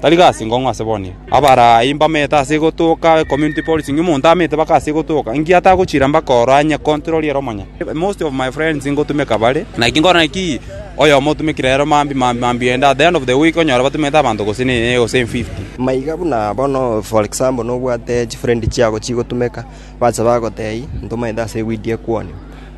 tari gasi nkong'u ase bonye. Abarai mbamete ase gotoka community policing, omonto amete mpaka ase gotoka, inki atagochira mpaka oro anye control ere omonyene. Most of my friends ngotumeka bare, naki nkore ki oyomo otumekire ere mambia mambia mambia ende at the end of the week onyore batumete abanto gose ne gose in fifty. Maiga buna bono for example nobwate chifrendi chiago chigotumeka, bache bagotebia ntomaete ase eweed ekwonwa.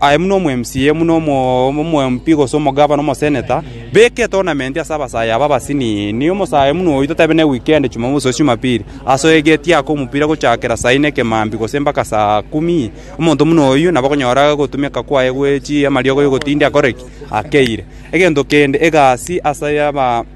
Aye buna omw'MCA, buna omomp, gose omogavana, omoseneta, beka etournament ase abasayi aba abasiniini, omosayi buna oyio totabe ne weekend, Jumamosi gose Jumapili, ase oegeti ake omopira gochakera saa ine kemambi gose mpaka saa kumi, omonto buna oyio nabo okonyora ogotumeka kwaye gwe chi amariogo ya ogotindia akore ki? Akeire. Egento kende, egasi ase aba.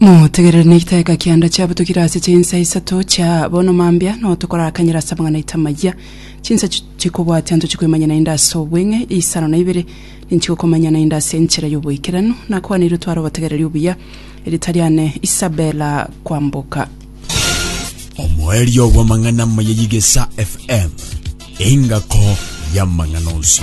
Motegerere na egiteka kianda chiabutokire ase chinsa isato chia bono mambia no tokorakanyera ase amang'ana aito amayia chinsa chi- chikobwatia ntochikwemanya naende ase obweng'e isano na ibere ninchigokomanya naende ase enchera y'oboikeranu nakwaneirwe tware obotegereri obuya Eritariane Isabella Kwamboka omoerio bw'amang'ana amaya y'egesa FM, engako y'amang'ana onsi.